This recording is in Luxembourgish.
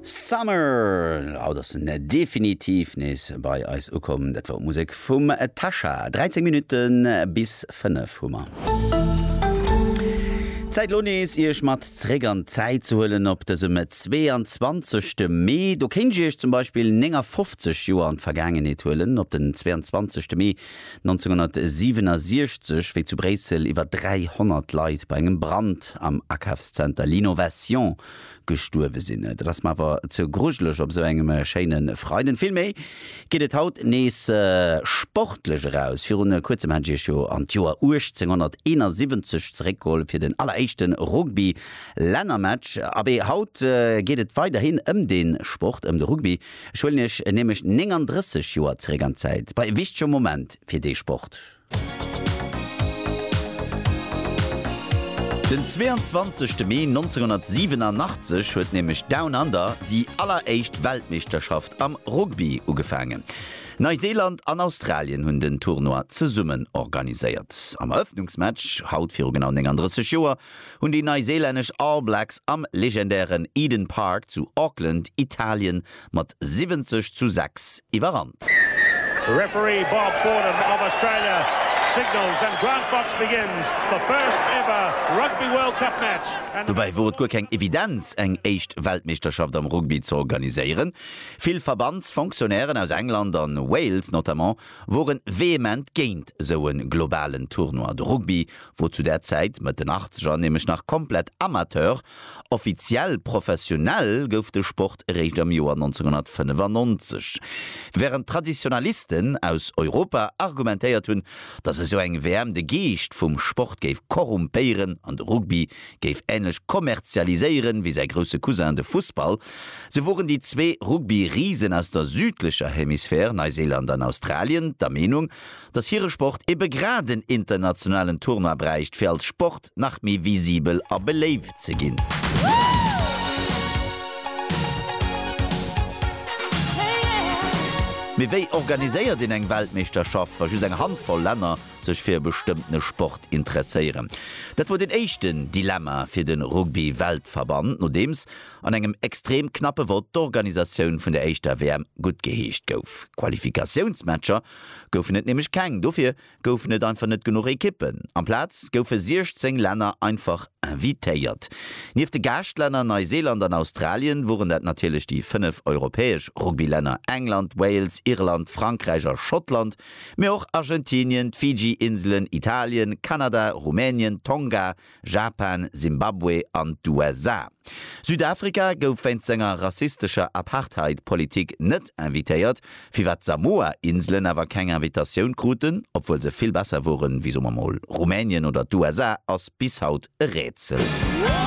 Summer! Haut ass en definitiv nees bei eis ukomm. Dat war d'Musek vum Tasha. 13 Minutte bis 5 hu mer. Zäit elo nees Iech mat zréck an d'Zäit ze huelen op dësem 22 Mee. Do kéint ech Iech zum Beispill 59 Joer an d'Vergaangenheet huelen. Op den 22 Mee 1967, wéi zu Bréissel iwwer 300 Leit bei engem Brand am Akafszenter L'Innovation gestuerwe sinn. Dat ass mer awer ze grujeleg op esou engem schéine Freiden. Villméi geet et haut nees sportlech eraus. Viru kuerzem hat ech Iech jo an d'Joer 1871 zeréckgeholl fir den alleréischte Rugby-Lännermatch. Abee, haut geet et weiderhin ëm dee Sport, ëm de Rugby. Ech huelen iech nämlech 39 Joer zeréck an d'Zäit, bei e wichtege Moment fir dee Sport. Den 22. Mee 1987 huet nämlech Down Under, déi alleréischt Weltmeeschterschaft am Rugby, ugefaangen. Neiseeland an Australien hunn den Tournoi zesummen organiséiert. Am Erëffnungsmatch, haut viru genau 39 Joer, hunn déi neiseelännesch All Blacks am legendären Eden Park zu Auckland Italien mat 70 zu 6 iwwerrannt. Referee Bob Fordham of Australia signals and Grant Box begins the first ever Rugby World Cup match and. Dobäi wor et guer keng Evidenz eng éischt Weltmeeschterschaft am Rugby ze organiséieren. Vill Verbandsfonctionnairen aus England an Wales notamment woren vehement géint esou en globalen Tournoi de Rugby wou zu där Zäit, Mëtt den Achtzeger, nämlech nach komplett Amateur, offiziell professionell gouf de Sport eréischt am Joer 1995, wärend d'Traditionalisten aus Europa argumentéiert hunn, datt esou eng WM de Geescht vum Sport géif korrumpéieren an de Rugby géif änlech kommerzialiséieren wéi säi grousse Cousin de Fussball, sou woren déi zwee Rugby-Risen aus der südlecher Hemisphär, Neiséiland an Australien, der Meenung, dass hire Sport ebe grad en internationalen Tournoi bräicht, fir als Sport nach méi visibel a beléift ze ginn. Mee wéi organiséiert een eng Weltmeeschterschaft, wa just eng Handvoll Länner sech fir e bestëmmtene Sport interesséieren? Dat wor den éischten Dilemma fir de Rugby-Weltverband, nodeems an engem extrem knappe Vott d'Organisatioun vun der éischter WM guttgeheescht gouf. Qualifikatiounsmatcher goufen et nämlech keng, dofir goufen et einfach net genuch Ekippen. Amplaz goufe 16 Länner einfach invitéiert. Nieft de Gaaschtlänner Neiseeland an Australien woren dat natierlech déi fënnef europäesch Rugbylänner England, Wales, Irland, Frankräich a Schottland, mee och Argentinien, d'Fiji-Inselen, Italien, Kanada, Rumänien, Tonga, Japan, Simbabwe an d'USA. Südafrika gouf wéinst senger rassistescher Apartheid-Politik net invitéiert, firwat d'Samoa-Inselen awer keng Invitatioun kruten, obwuel se vill besser woren wéi, soe mer mol, Rumänien oder d'USA, ass bis haut e Rätsel.